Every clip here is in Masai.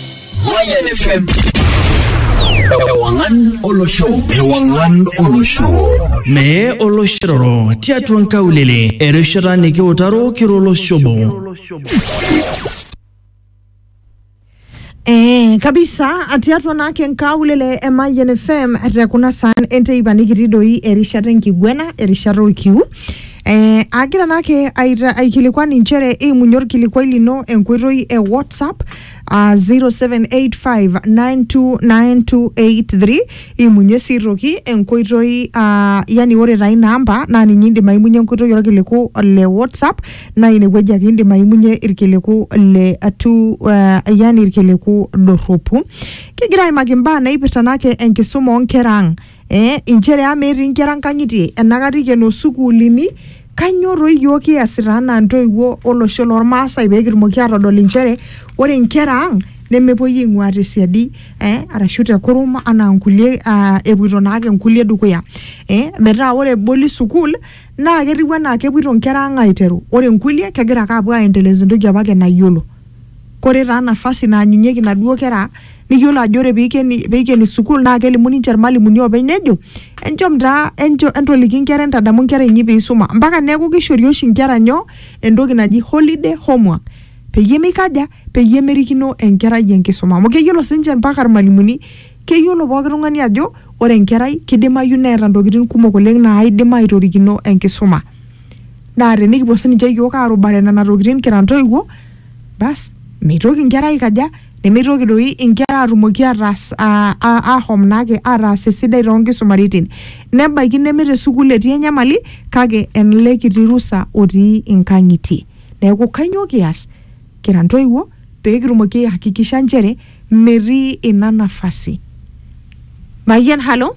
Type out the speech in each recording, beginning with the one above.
Mayan FM. Ewangan Olosho. Ewangan Olosho. Mee oloshiroro tiatua nkaulele erishata nikiutaro kiro oloshobo. Eh, kabisa tiatua naake nkaulele e Mayian FM te kuna saan enteipa nikitii doi erishata enkiguena erishata orkiu eh, agira naake aita- aikilikuan inchere eimunye orkilikuai lino enkoitoi e WhatsApp uh, 0785929283 imunye sii toki enkoitoi uh, yani ore taa ina amba naa ninye indim aimunye enkoitoi orkiliku le whatsapp naa inewueji ake indim aimunye irkiliku le atu uh, yani irkiliku dorropu kigira aimaki imbaa naipirta naake enkisuma oonkera ang eh, inchere ama etii inkera nkang'itie enakata ikeno sukuulini kanyoo toi iyiook kiasita anaa intoiwuo olosho lormaasai pee kitumoki aatodol inchere ore inkera ang nemepuoi aing'ua tesiadi eh, arashu tekurum anaa inkulie ah, epuoito naake inkulie dukuya eh, metaa ore eboli sukuul naa ketiu anaa kepuoito inkera ang aiteru ore inkulie kegira ake apuo aendeleza entoki apake nayiolo. Kore taa nafasi naanyunyeki naduo kera niyolo ajo ore peikeni peikeni sukul naa kelimu ninche ilmalimuni oopeny nejo, enchom taa encho entoliki nkera entadamu nkera inyi peisuma mpaka neaku keishori oshi nkera nyoo? Entoki naji holiday homework peyie meikaja? Peyie merikino enkerai enkisuma amu keyolo siinche mpaka ilmalimuni, keyolo pooki tung'ani ajo ore enkerai keidimayu neeta ntokitin kumok oleng' naaidim aitorikino enkisuma. naa tenikipuo sininche iyiook aarubare nena tokitin kira intoiwuo bas meitoki inkera aikaja nemeitoki doi inkera aatumoki ataas aa- aa- ahom naake ataas esidai toonkisumaritin nebaiki neme te sukuul etii enyamali kake ele kiti rusa otii inkang'itie neeku kainyoo kias kira intoiwuo peekitumoki ae hakikisha nchere metii ina nafasi mayian halo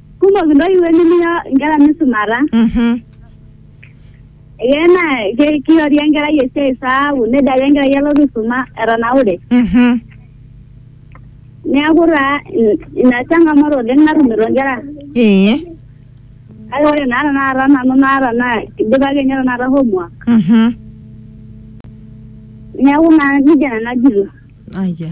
kumok intoiwuo nimiya inkera misumata Mhm. ee naa ke- kiori enkerai esiai saaku nejo ake enkerai alotu aisuma etanaure Mhm. neeku taa in- ina changamoto oleng natumito inkera Ee. kake ore naa tenakata nanu naata naa idipa ake ninye tenakata homework Mhm. neeku naa nejia nanu ajito Aya.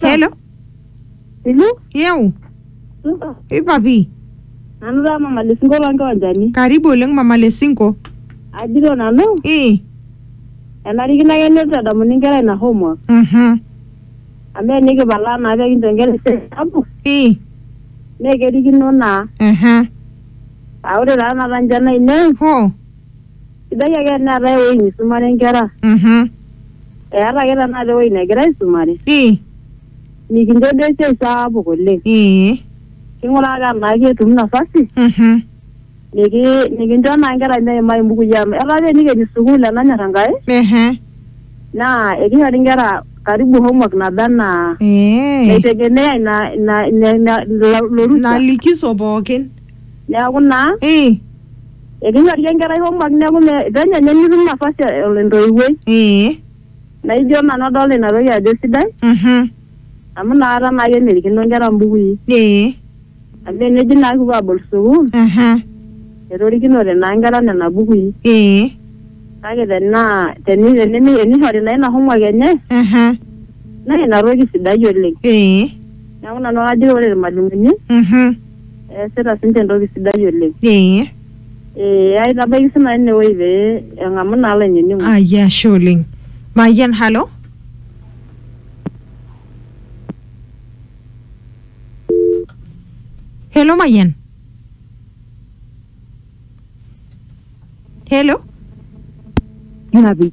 Hello. Ilu? Yeu. Supa. Ipapi. Nanu taa mama lesinko lonkiwanjani. Karibu oleng mama Lesinko. Ajito nanu, Eh. enarikino ake nitadamuni nkera ina homework. Mhm. Amu enikipalaa naa pekincho nkera esiai sapuk, Eh. naa kerikino naa. Aha. Aa ore taa napa nche naine, Ho. Sidai ake teneetae ewueji nisumare nkera. Mhm. Eeta ake tenakata ewueji negira aisumare. Ii. Mikincho duo esiai sapuk oleng. Ee. King'uraa ake tenaa ketum nafasi. Mhm. Niki nikincho naa nkera meimayu mbukui amu etaa apa enikeni sukuul enanyor Enkai. Ehe. Naa ekishori nkera karibu homework naba enaa Ee. naitegemea ina ina ina ina ilo ilo rusa. Ina likiso pookin. Neeku naa Ii. Ekinyorie enkerai homework neeku me- penyo ninye nitum nafasi ol entoiwuoi. Ee. Naijo nanu adolta ina toki ajo sidai Mhm. amu inakata naa ake emirikino nkera mbukui. Ee. Amu eneji naa kipuo abol sukuul Mhm. etorikinote naa nkera nena bukui. Ee. Kake tenaa teni tenimi tenishori naa ina homework enye Mhm. naa ina toki sidai oleng. Ee. Neeku nanu ajo ore irmalimuni Mhm. eesita sinche entoki sidai oleng. Ee. Ee aitabaiki sii nanu inewueji pee eng'amu naa olainining'oni. Ayia ashe oleng. Mayian halo. Hello Mayian. Hello. Nabi.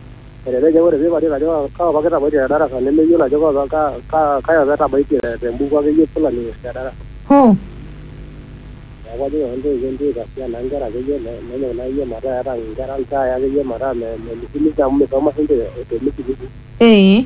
Elelek ajo ore pee iparie ajo kaa opa kitabaitie te darasa nemeyiolo ajo kai opa etabaitie te mbuku ake yie fulani te darasa. Hoo! Neeku ajoki ake intoiwuo entaasisho naa inkera ake yie nenyok naa ake yie metaa eeta inkera iltai ake yie metaa memismis amu misoma siinche te misisi. Ee.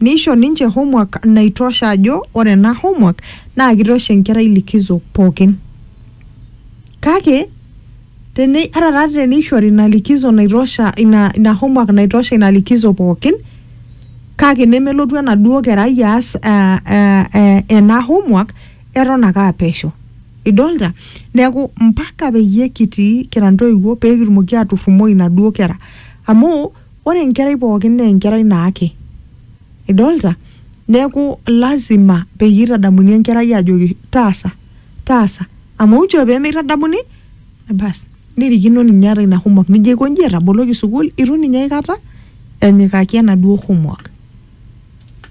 Neisho ninche homework naitosha ajo ore ena homework naa kitosha enkerai likizo pookin. Kake teni, ata taa teneishori ina likizo naitosha ina, ina homework naitosha ina likizo pookin kake nemelotu enaduo kerai aas aa, aa, aa, ena homework eton ake aa pesho. Idolita? Neeku mpaka peyie kitii kira ntoiwuo pee kitumoki aturrumoo inaduo kera amu Ore enkerai pookin naa enkerai naake. Idolta? Neeku lazima peyie itadamuni enkerai ajoki taasa, taasa. Amu inchoo pee mitadamuni basi nirikino ninye ata ina homework nijo aikonji etaboloki sukuul itu ninye aikata enyikaki enaduo homework.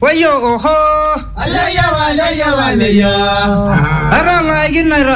Woiyo ohoo! Aleyioo aleyioo aleyioo! Atang'aikinoto.